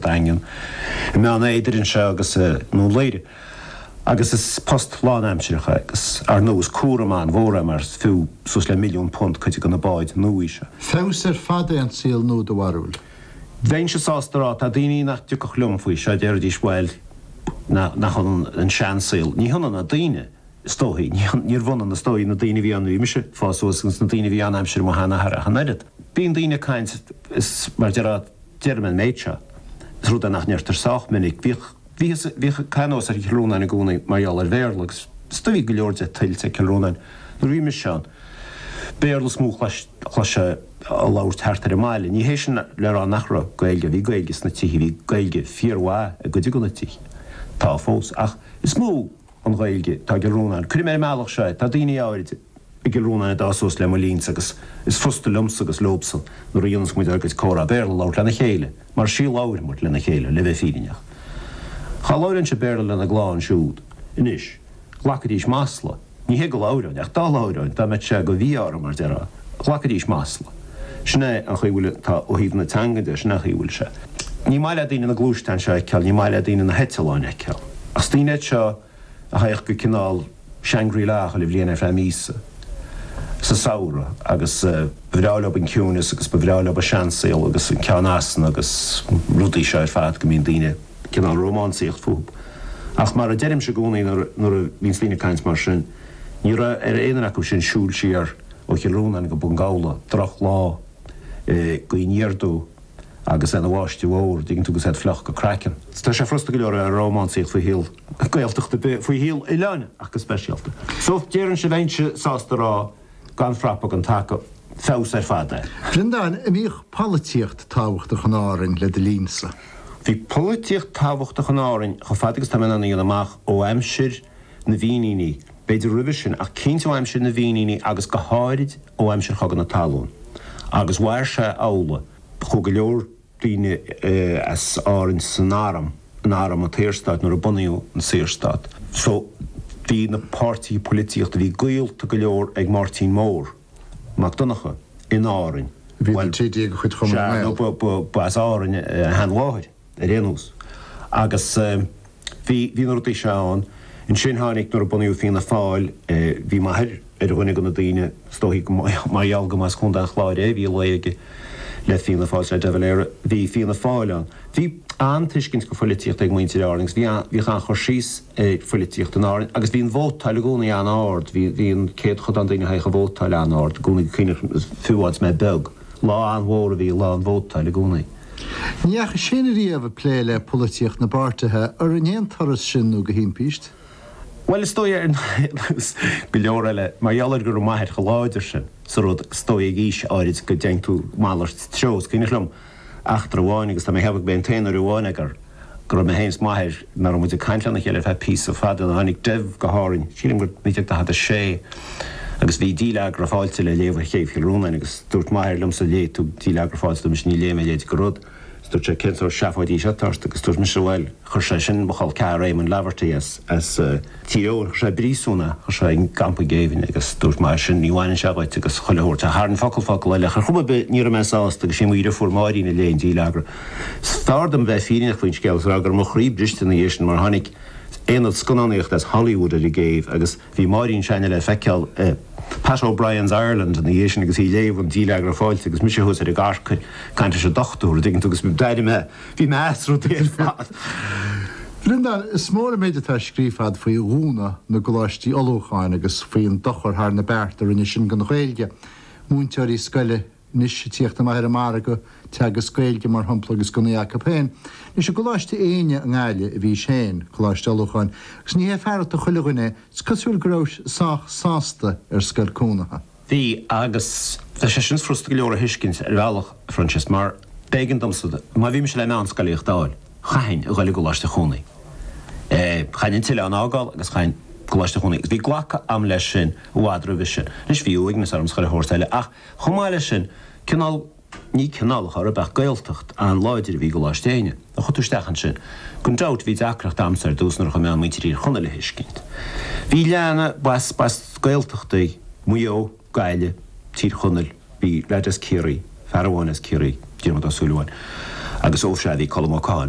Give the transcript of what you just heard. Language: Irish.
Daingean, i mBeann Éadair anseo agus i nDún Laoghaire, agus is post lánaimsireach é, agus ar ndú is cúram an-mhór é mar is fiú suas le milliún punt cuid de na báid nuaí seo. Feabhas ar fad é an saol nua do bharúil? Bheinnse sásta a rá. Tá daoine nach dtiocfadh liom faoi seo, déarfaidís bhuel nach ionann an seansaol. Ní hionann na daoine is dóichí, níorbh ionann is dóichí na daoine a bhí ann nuair a bhí mise ag fás suas agus na daoine a bhí ann aimsir mo sheanathar ach an oiread. Bíonn daoine ag caint is mar déarfá, Deirim an méid seo, is rud é nach ndeirtear sách minic, bhíodh, bhíothas, bhíodh caitheamh anuas ar Chill Rónáin i gcónaí mar gheall ar Bhéarla agus do bhí go leor de tuillte ag Cill Rónáin nuair a bhí mise ann. Béarla is mó a chloisfeá á labhairt thart ar an mbaile. Ní hé sin le rá nach raibh Gaeilge, bhí Gaeilge sna tithe, bhí Gaeilge fíormhaith i gcuid de na tithe, tá fós, ach is mó an Ghaeilge atá i gCill Rónáin. Cuirim ar an mbealach seo é, tá daoine áiride, I gCill Rónáin a d'fhás suas le mo linn-sa agus is frusta liomsa agus leob-sa nuair a dhéanas muid ár gcuid comhrá Béarla a labhairt lena chéile, mar is í a labhair muid lena chéile, le bheith fírinneach. Ach dá labhróinnse Béarla lena gclann siúd anois, ghlacfaidís masla, ní hé go labhróinn, ach dá labhróinn, dá mbeadh sé go mhí-ádh orm, mar déarfá, ghlacfaidís masla. Sin é an chaoi a bhfuil, tá, ó thaobh na teangan de, sin é an chaoi a bhfuil sé. Ní maith le daoine na gluaisteáin seo a fheiceáil, ní maith le daoine na heitleáin a fheiceáil. Ach is daoine iad seo. a thagadh go cineál Shangri-La chuile bhliain ar feadh míosa sa samhradh agus ba bhreá leob an ciúineas agus ba bhreá leob an seansaol agus an ceann asna agus na rudaí seo ar fad go mbíonn daoine cineál ag rómánsaíocht fúthub. Ach mar a deirimse i gcónaí nuair a bhíonns daoine ag caint mar sin, ní raibh ar aon fhear acu sin siúl siar ó Chill Rónáin go Bun Gabhla, drochlá gaoithe aniar aduaidh agus é ina bháisteach mhór, dtuigeann tú, agus iad fliuch go craiceann. Tá sé frusta go leor a bheith ag rómánsaíocht faoi shaol Gaeltacht ar bith faoi shaol oileáin ach go speisialta. So, déarfainn sin, bheinnse sásta a rá gan frapa gan taca. Feabhas ar fad é. Breandán, An mbíodh polaitíocht tábhachtach in Árainn le do linn-sa? Bhí polaitíocht tábhachtach in Árainn chomh fada agus tá mé in ann a dhéanamh amach, ó aimsir na bhFíníní, b'fhéidir roimhe sin ach cinnte ó aimsir na bhFíníní agus go háirid ó aimsir Chogadh na Talún. Agus mhair sé amhlaidh. Chuaigh go leor daoine as Árainn san arm, in arm an tSaorstáit, nuair a bunaíodh an Saorstát. So, bhí na páirtithe polaitíochta, bhí gaolta go leor ag Máirtín Mór, Mac Donncha, in Árainn. Bhí ina TD de chuid Chumann na nGael. Sea, nó ba as Árainn a sheanmháthair, ar aon nós. Agus. Bhí, bhí na rudaí seo ann. Ansin tháinig, nuair a bunaíodh Fianna Fáil, bhí m'athair ar dhuine de na daoine, is dóichí go, mar gheall go mba as Contae an Chláir é, bhí lé aige le Fianna Fáil, le De Valera, bhí Fianna Fáil ann. Bhí an-tuiscint go pholaitíocht ag muintir Árann agus bhí, bhíodh an-chur síos ar pholaitíocht in Árainn agus bhí an vótáil i gcónaí an-ard, bhí, bhí an céadchodán daoine, a thagadh a vótáil, an-ard i gcónaí, fiú is mé beag. Lá an-mhór a bhí lá an vótáil i gcónaí. Ní dheachais féin ariamh ag plé le polaitíocht na bpáirtithe, ar in aon turas sin nó de thimpiste. Bhuel, is dóigh, ar nós go leor eile, mar gheall ar go raibh m'athair chomh láidir sin sa rud, is dóigh ag aois áirid go dteigheann tú malairt treo, is cuimhneach liom eachtra amháin agus tá mé ag ceapadh gurb é an t-aon uair amháin ag ar, go raibh mé féin is m'athair, nach raibh muid ag caint lena chéile ar feadh píosa fada nuair a tháinig Dev go hÁrainn, sílim gur 1946, agus bhí díleagra fáilte le léamh ar Chéibh Chill Rónáin agus dúirt m'athair liomsa léifidh tú díleagra fáilte dúirt mise ní léifidh mé a leithéid de rud is dúirt sé cén sórt seafóid í seo atá ort agus dúirt mise bhuel chuir sé sin mo chol ceathar Éamon Laverty as Tír Eoghain i bpríosún, chuir sé i gcampa géibhinn agus dúirt m'athair, ní bhaineann sé dhuit, agus chuile shórt. Ach tharraing focal focal eile. Ach ar chuma ar bith, ní raibh mé sásta, agus sí mo dheirfiúr Máirín a léigh an díleagra. Is fearr dom bheith fírinneach faoin scéal, is a rá go raibh mo chroí briste ina dhiaidh sin, mar tháinig aonad scannánaíochta as Hollywood ar an gcéibh agus bhí Máirín s'againne le feiceáil i Pat O'Brien's Ireland ina dhiaidh sin agus í ag léamh an díleagra fáilte agus mise thuas ar an gcarcair ag caint leis an dochtúir, an dtuigeann tú, agus d'airigh mé. Bhí mé as rudaí ar fad. A Bhreandáin, is mór an méid atá scríofa agat faoi dhúnadh na gcoláistí ullmhúcháin agus faoin dochar thar na bearta a rinne sin don Ghaeilge. Múinteoirí scoile anois ag tíocht amach ar an margadh, ag teagasc Gaeilge, mar shampla, agus gan í acu féin. Anois, i gColáiste Éinne i nGaillimh a bhís féin, coláiste ullmhúcháin, agus ní hé fearacht chuile dhuine é, is cosúil go rabhais sách sásta ar scoil cónaithe. Bhí, agus bheadh sé sin furasta go leor a thuiscint, ar bhealach, a Phroinsias, mar b'éigean domsa, má bhí mise le meánscolaíocht a fháil, chaithfinn a ghoil i gcoláiste cónaithe. Chaithfinn an t-oileán a fhágáil agus chaithfinn coláiste cónaithe, agus bhí glactha agam leis sin i bhfad roimhe sin. Anois, bhí uaigneas orm is chuile shórt eile, ach chomh maith leis sin, cineál, Ní cineálacha ar a beadh Gaeltacht an-láidir a bhí i gColáiste Éinne. Nuair a chuaigh tú isteach ansin. Gan dabht, bhí deacracht a'msa ar dtús nach raibh mé in ann muintir Thír Chonaill a thuiscint. Bhí a lán acu as Gaeltachtaí, Maigh Eo, Gaillimh, Tír Chonaill, bhí leaid as Ciarraí, fear amháin as Ciarraí, Diarmaid Ó Súilleabháin, agus ó sea, bhí Colm Ó Catháin.